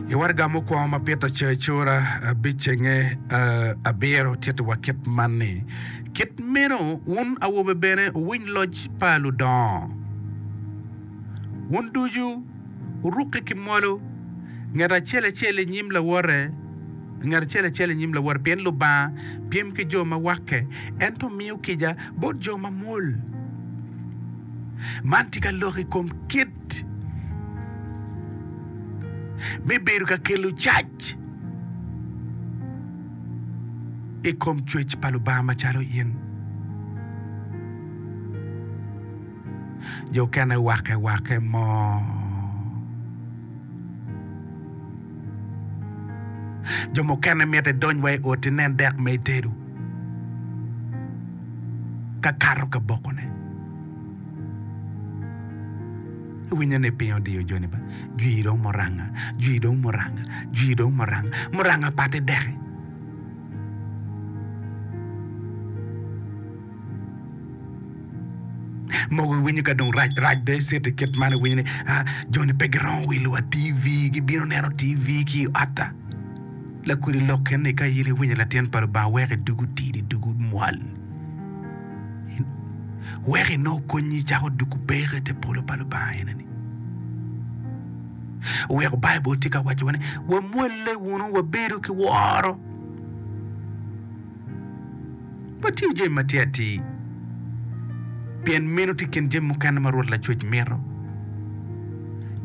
I waraga mukwongo ma Peter ocoyo i cura abicenge abiro, tittiwa kit man ni, Kit meno wun awobe bene wuwiny loc pa ludongo. Wun ducu wurukke ki mwolo, ngat acel acel i nyim lawote, ngat acel acel i nyim lawote, pien Lubanga pyem ki jo ma wakke, ento miyo kica bot jo mamwol. Man tye ka lok i kom kit tit me bedo ka kelo cac i kom cwec pa Lubanga macalo in. Jo okene wake wake mo jo mukene miti idony wa i ot inen dek ma itedo ka kato ka bokone. Iwinyo ni piny odiyo joni ba. Jwi dong muranga, jwi dong muranga, jwi dong muranga, muranga pate deke. Mogo iwinyo ka dong rac rac dong icito i kit man iwinyo ni ah, joni pe giromo wilo wa TV, gibino neno TV ki i otta. Lakudi lok keni ka in iwinyo latin pa Lubanga weko idugu tidi, idugu mwal. wek en nongo konyi icako dwogo peko i te polo pa Lubanga ene ni. Weko Baibul tye ka wacowa ni wamwolle wunu wabedo ki woro. Watiyo jami matir atir pien meno tye kin jami mukene ma Rwot Lacwec mito.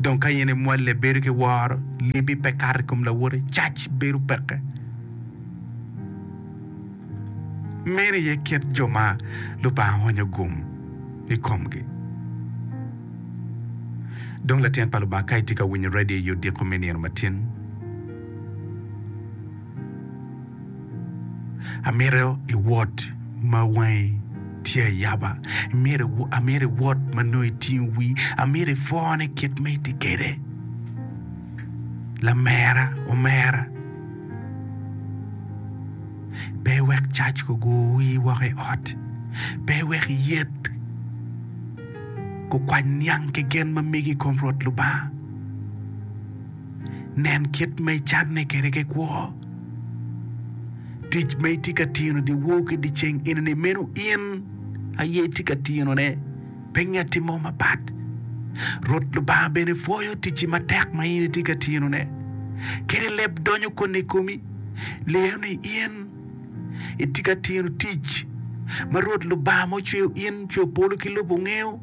Dong ka in imwolle bedo ki woro, libi pe kato i kom lawote, cac bedo peke. Meno aye kit jo ma Lubanga oonyo gum i komgi. Dong latin pa Lubanga, ka itye ka winyo redio i odiko me nino matin, amito iwot ma wangi tye ayaba, amito iwot ma nongo itingo wii, amito ipwone kit ma itye kwede. Lamera omera. Pe iwek cac gugur wii woko i ot. Pe iwek yet gukwany niang ki gen ma migi i kom Rwot Lubanga. Nen kit ma icanne kwede ki kwo. Tic ma itye ka tino dyewor ki dyeceng eni-ni meno in aye itye ka tinone. Pe ngeti mo mapat. Rwot Lubanga bene pwoyo ticci matek ma in itye ka tinone, kadi leb donyo koni i komi, lyeyo ni in itye ka tino tic ma Rwot Lubanga ma ocweyo in, ocweyo polo ki lobo ngeyo,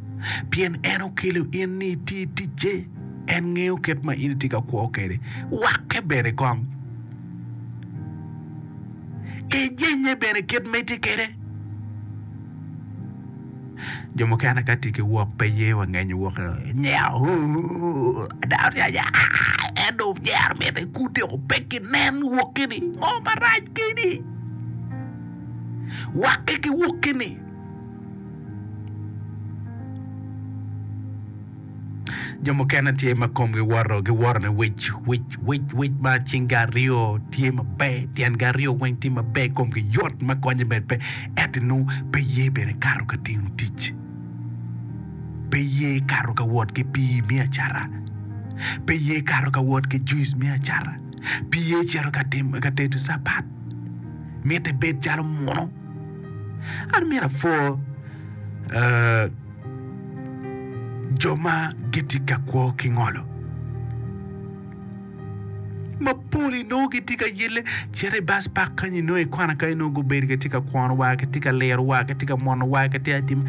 pien en okelo in ni iti ticce. En ngeyo kit ma in itye ka kwo kwede, wakke bene kong, ejenye bene kit ma itye kwede. Jo mukene ka tye ki wok pe ye wangenyo wok nyeko ada oryanya aai en dong nyero miti ikute o pe ginen woki ni ngo marac keni wake ki woki ni. Jo mukene tye ma komgi woto, giwoto ni wic, wic, wic, wic ma cingi aryo tye maber, tyengi aryo weng tye maber, komgi yot ma konye bene pe, ento nongo pe ye bene kato ka timo tic, pe ye kato ka wot ki pii me acata, pe ye kato ka wot ki juice me acata, pe ye cito ka timo ka tedo capat, miti bed calo muno. An myero apwor, aa. Jo ma gitye ka kwo ki ngolo mapol inongo gitye ka yelle cito i bas pak kany inongo i kwana kany inongo gubedo kitye ka kwono wa kitye ka liro wa kitye ka mono wa kitye ka timo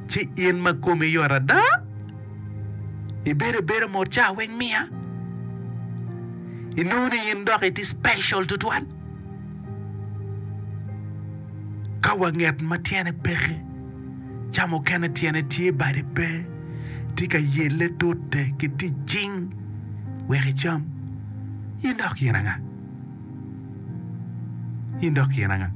ci in ma komi yot ada ibedo abeda mot ca weng miya inongo ni in dok itye special tutwal Ka wanget ma tyene peke, ca mukene tyene tye bade pe, tye ka yelle tute ki tic cing wek icam. In dok yen anga? In dok yen anga?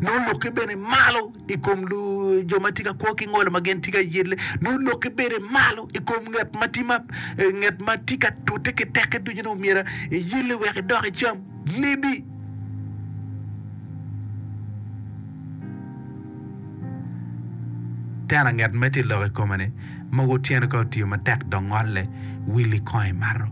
Nongo lukke bene malo. i kom jo ma tye ka kwo ki ngolo ma gin tye ka yelle, nongo lok ibede malo i kom nget ma tye ma, eh, nget ma tye ka tute ki teke ducu, nongo myero iyelle wek idok icam lebi. Teno anget ma itye lok i kome-ni, mogo tyene ka otiyo matek dok ngolle, willi kong i marro.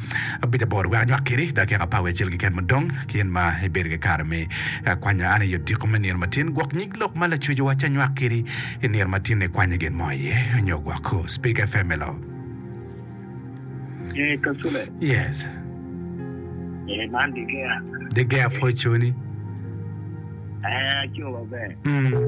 Abic aboro, wek anywak kiri, dok yaka apawi acel keken mudong, kien ma ibedo ki kare me kwanya an i odiko me nino matin, gwok nyig lok ma lacocowa ci anywak kiri i nino ma tinni ikwanya gin mo iye, nyo gwok Speaker FM elo. Ee, Kasule. Yes. Ee, man Digea. Digea Fortune-ni. Ee, aco maber. Mm.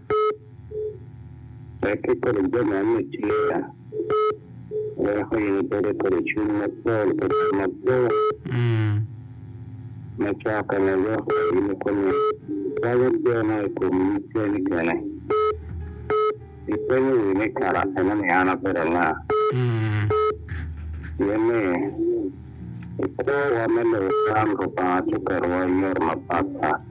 Wek ikodo jo man me Cwera, weko in bed i kodi cwiny mapol ki tam mapol. Me cokke ma yok ma in ikome kwanyo geno i kom nyig keni kene. Ipenyo wi ni karakana ni an abedo nga? Pien ni i kwo wa me lobo man Lubanga cukerwa i yore mapat pat.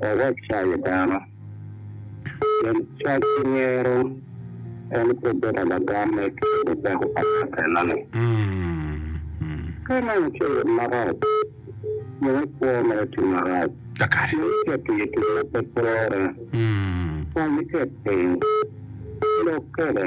wawac cayo dano. Pien cac ki ngero en pe bedo lagamme ki bedo peko pa ngat enoni. Ka ineno cowot marac, nyo ikwo ma etimo marac, nyo iket i tic ma pe twerre, kwany iket piny, lok kwede.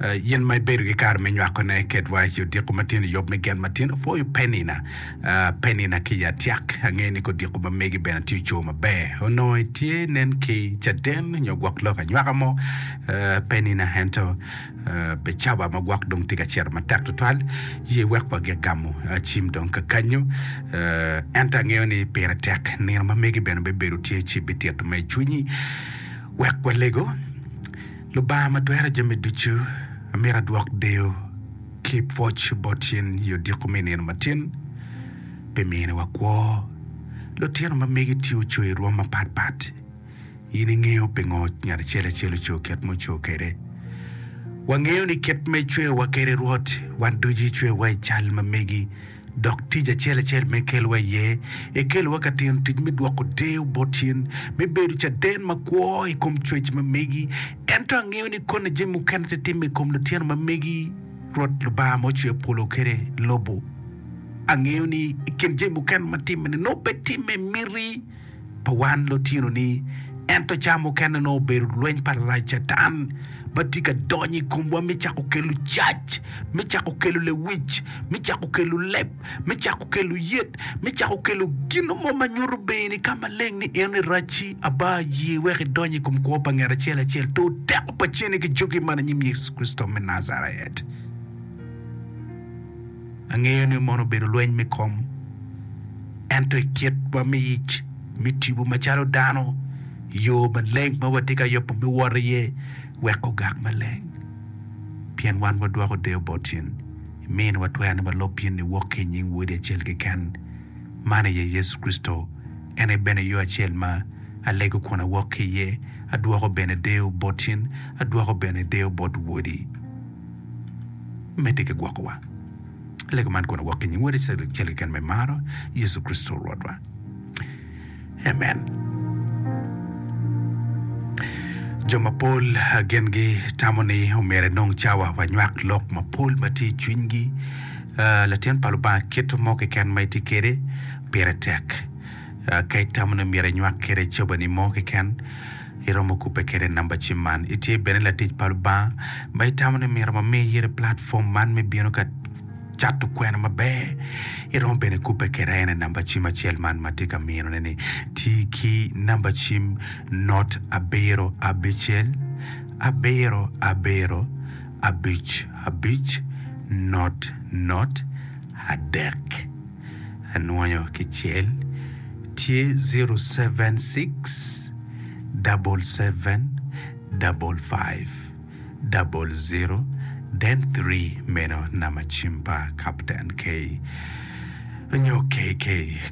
In ma ibedo ki kare me nywakone, ket waci odiko matino i yub me gen matino. Pwoyo Penina, Penina ki i atyak. Angeyo ni kodiko ma megi bene tye ocoo maber. Onongo itye nen ki caden nyo gwok lok anywaka mo, Penina, ento Becaba ma gwok dong tye ka ciro matek tutwal. Ye wek wagik gamo cim dong kakanyo. Ento angeyo ni pire tek. Nino ma megi bene bibedo tye ci bitito ma i cwinyi. Wek walego. Lubanga ma twero jami ducu, amito adwok deyo ki pwoc bot in i odiko me i nino matin pi miniwa kwo. Lutino ma megi tye oco i rwom mapat pat. In ingeyo pingo ngat acel acel oco kit ma oco kwede. Wangeyo ni kit ma icweyowa kwede Rwot, wan ducu icweyowa i cal ma megi Dok tic acel acel ma ikelowa iye, ikelowa ka timo tic me dwoko deyo bot cen, me bedo caden makwo i kom cwec ma megi. Ento angeyo ni koni jami mukene te timme i kom lutino ma megi, Rwot Lubanga ma ocweyo polo kede lobo. Angeyo ni i kin jami mukene ma timme-ni, nongo pe timme i miti. pa wan lutino-ni. Ento ca mukene nongo obedo lweny pa lalac Catan ma tye ka donyo i komwa me cako kelo cac, me cako kelo lewic, me cako kelo leb, me cako kelo yet, me cako kelo gin mo ma nyuto bene i ka maleng ni en aye Racci. Aba, ye wek idony i kom kwo pa nget acel acel, tur teko pa ceni ki juki man i nyim Yecu Kricito me Najaret. Angeyo ni mono obedo lweny me kom, ento i kitwa me ic me tipo macalo dano, yo maleng ma watye ka yubo me wot iye wek ogak maleng. Pien wan wadwoko deyo boti, imiyo ni watwero ni walub in niwok ki i nying Wodi acel keken, man aye Yecu Kricito. En aye bene yo acel ma alego kun awok ki iye, adwoko bene deyo boti, adwoko bene deyo bot Wodi. medde ki gwokowa. Lego man kono wok ki nying Wode Ceglik Cal keken me Maro, Yecu Kricito Rwotwa. Amen. Jo mapol gengi tamo ni omyero enong cawa wa nywak lok mapol ma tye i cwinygi. Ah, Latin pa Lubanga keto mo keken ma itye kwede pire tek. Ah, Ka itamo ni omyero inywak kwede cabani mo keken, iromo kubbe kwede namba cim man. Itye bene latic pa Lubanga ma itamo ni omyero ma mi iyero platform man me bino ka cato kwena maber, iromo bene kubbe kweda en aye namba cim acel man ma atye ka mino ne ni ti ki namba cim not abiro abicel abiro abiro abic abic not not adek. anwoyo ki cel tye zero seven six double seven double five double zero then three meno namba cim pa Kapten Kay nyo KK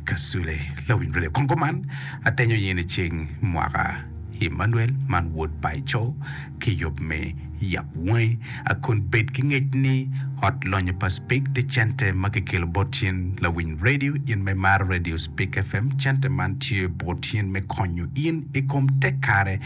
Kasule lawiny redio kong kuman atenyo ye ni ceng mwaka Emmanuel man Wod Paco ki yub me yab wangi, a kun bed ki ngec ni Ot Lonyo pa Spik tye cente ma kikelo bot in lawiny redio. In ma imaro redio Spik FM, cente man tye bot in me konyo in i kom te kare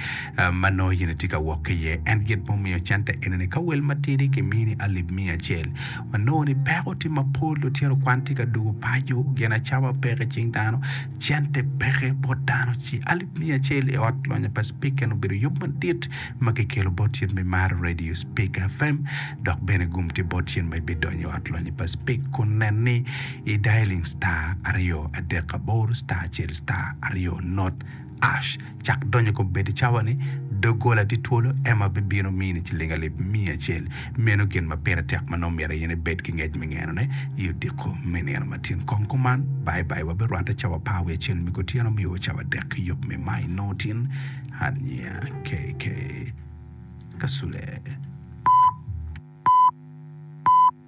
ma nongo in itye ka wok ki iye. En gin ma omiyo cente eni ni ka wel matidi kimini alip miya acel. Wanongo ni peko tye mapol, lutino kwan tye ka dwogo paco, gin acama peke cing dano. Cente peke bot dano ci alip miya acel i ot lonya pa Spika eno obedo yub madit ma kikelo bot yen me mar Radio Spika FM dok bene gum tye bot yen ma ibidonyo i ot lonya pa Spik kun nen ni i dialing star aryo adek aboro star acel star aryo not ash Cak donyo i kom bedo cawa ni doggola tye twolo, Emma bibino mini ciling alip miya acel. Meno gin ma pire tek ma nongo myero in ibed ki ngec me ngenone. I odiko me nino ma tin kong kuman, Baibai wabirwatte cawa par wiye acel me kutyeno me o cawa dek ki yub me Mai nongo tin aniya. KK. Kasule.